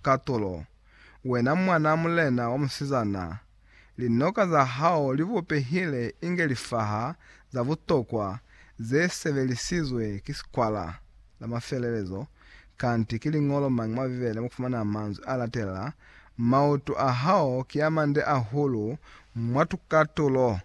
katolo, wena mwanaa mulena wa musizana, linoka za hao li bupehile inge lifaha za butokwa ze sebelisizwe ki sikwala. La mafelelezo, kanti ki liñolo mañi mwa Bibele mo fumana manzwi a latelela, Maoto a hao ki a mande ahulu mwa tukatulo,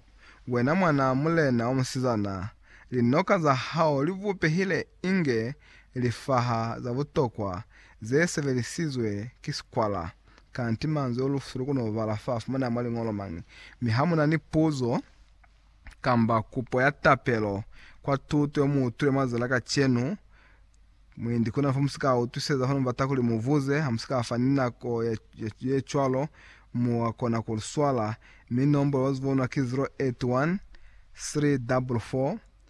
wena mwanaa mulena wa musizana, linoka za hao li bupehile inge lifaha za butokwa Ze sebelisizwe ki sikwala, kanti manzwi o lufu lu kona ku bala fa fumaneha mwa liñolo mañi. Mi ha mu na ni puzo kamba kupo ya tapelo kwa tuto ye mu utwile mwa zala kacenu, mwendi ku na fo mu si ka utwiseza fa. Ni bata kuli mu buze, ha mu si ka fa ni nako ye cwalo, mua kona ku li swala, mi nombolo wa zibonwa ki 081 344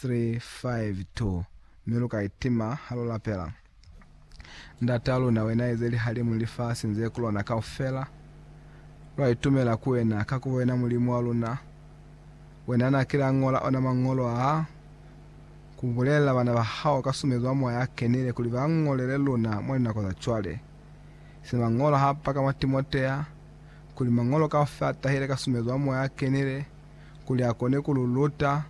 374735-2 Mi lu ka itima ha lu lapela, Ndataa luna, Wena eze lihalimu ni lifasi ni ze ku lona kaufela. Lwa itumela ku Wena, kakuba Wena Mulimu wa luna. Wena na kile a ñola ona Mañolo aa, ku bulelela bana ba Hao ka sumezo wa Moya a Kenile kuli ba ñolele luna mwa linako za cwale, se Mañolo ha paka mwa Timotea, kuli Mañolo kaufela a tahile ka sumezo ya Moya a Kenile, kuli a kone ku lu luta,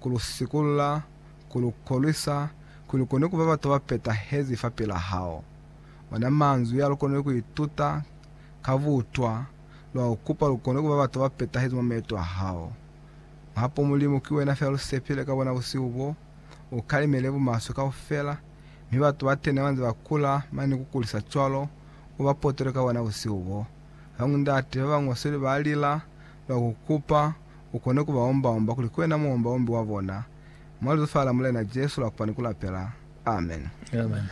ku lu sikulla, ku lu kolwisa, kuli lu kone ku ba batu ba petahezi fa pila hao. Ona manzwi a lu konile ku ituta ka butwa, lwa ku kupa lu kone ku ba batu ba petahezi mwa maeto a hao. Mahapo Mulimu, ki wena fela lu sepile ka bona busihu bo, u kalimele bumaswe kaufela, mi batu batene ba nze ba kula mane ku kulisa cwalo, u ba potole ka wona busihu bo. Bañwi ndate ba ba ñosweli ba lila, ba ku kupa u kone ku ba omba-omba kuli ki wena Muomba-ombi wa bona. Mwa Lizufa la Mulena Jesu la kupa ni ku lapela. Amen. Amen.